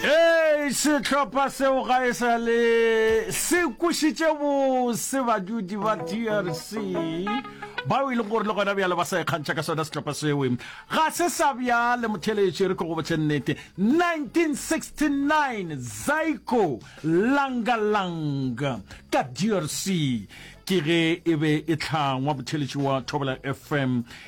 ee sehlopha seo ga e sa le se kwešitše bose badudi ba drc bao e leng gore le gona bjale ba sa ikgantšha ka sona setlhopha sewe ga se sa bjale motheletše re tlogo botšhe nnete 1969 zaiko langalanga ka drc ke ge e be e tlhangwa motheletši wa thobela fm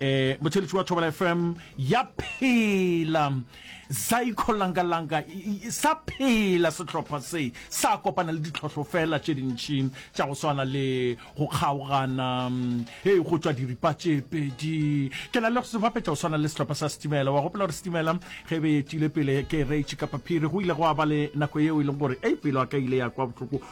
Eh, motheletši wa thobela fm ya phela zaiko langalanga sa phela sehlopha se sa kopana le ditlhohlo fela tše dintšhi tša go swana le go kgaogana mm, e go tswa diripa tše pedi ke na le go sebapetša go swana le sehlopha sa setimela wa gopela gore setimela ge be etile pele ke reitše kapa phiri go ile go a ba le nako yeo e leng gore e pelo a ka ile ya kwa bohloko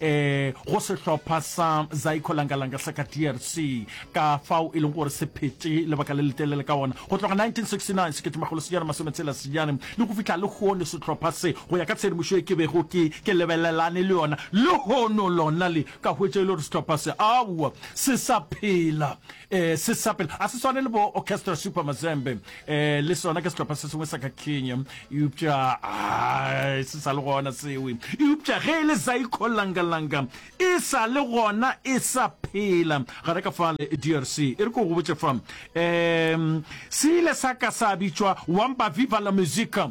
e go sehlopha sa zaiko langalanga sa ka drc ka fao e leng gore se phete lebaka le letelele ka ona go tloga 1969 seketemagolo senyana masometshela senyane le go fihla le hono sehlopha se go ya ka tshedimošo e ke bego ke ke lebelelane le yona le hono lona le ka hwetša e le gore sehlopha se aowa se sa phela Eh, se sa pele a se swane le bo orchestra super mazembe eh, le sona ke setlhopha se sengwe sa ka kenya eupša ah, se sa le gona sewe eupša ge e le zaiko langalanga e sa le gona e sa phela gare ka fale drc e re ko go botse fa um se ile sa ka sa bitšwa wampa viva la musica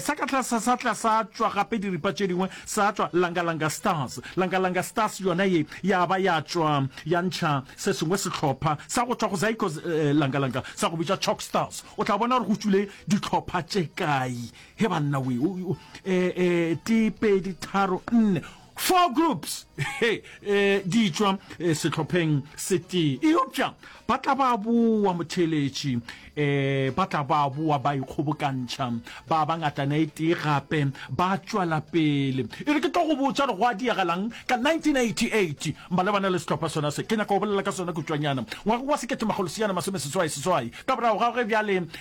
Sa ka tlase sa tla sa tšwa gape diripa tše dingwe, sa tšwa Langa-Langa Stars. Langa-Langa Stars yona ye ya ba ya tšwa ya ntšha se sengwe sehlopha sa go tšwa go Zaikos Langa-Langa sa go bitšwa Chalk Stars. O tla bona gore go tšwile dihlopha tše kae he banna wee, tee, pedi, tharo, nne. Four groups hey, eh, di tšwa eh, sehlopheng setee eopša ba tla ba boa motheletši eh, ba tla ba boa ba ikgobokantšha ba ba ngatana e tee gape ba tšwela pele e re ke tlo go botša re go a diagalang ka 1988 malebana le sehlopha sona se ke nyaka go bolela ka sona kutšwanyana ngwaga wa seketemagoloseyana masomeseswai seswai ka borago ga ge bjale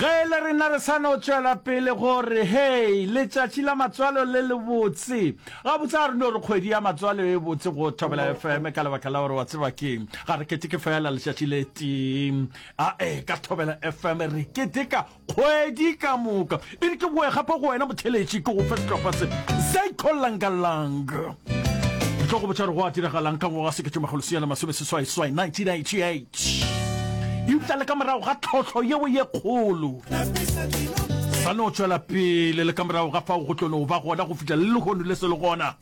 Ge e le rena re sa no tšwela pele go re, Hei, letšatši la matswalo le lebotse! Gabotse ga re no re kgwedi ya matswalo e botse go Thobela FM ka lebaka la gore wa tseba keng? Ga re keteke feela letšatši le tee. Ae, ka Thobela FM re keteka kgwedi ka moka. E re ke boe gape go wena motheeletši ke go fe sehlopha se, Zaiko Langa Lang. Re tlo go botša gore go a diragalang ka ngwaga wa sekete makgolo senyana masome seswaiswai, 1988. eupša le ka morago ga tlhohlo yeo ye kgolo sa no tšwela pele le ka morago ga fao go tlo no ba gona go fihla le lehono le se le gona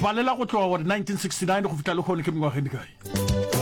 balela go tloga gore 1969 go fihla lehono ke mengwageng dikae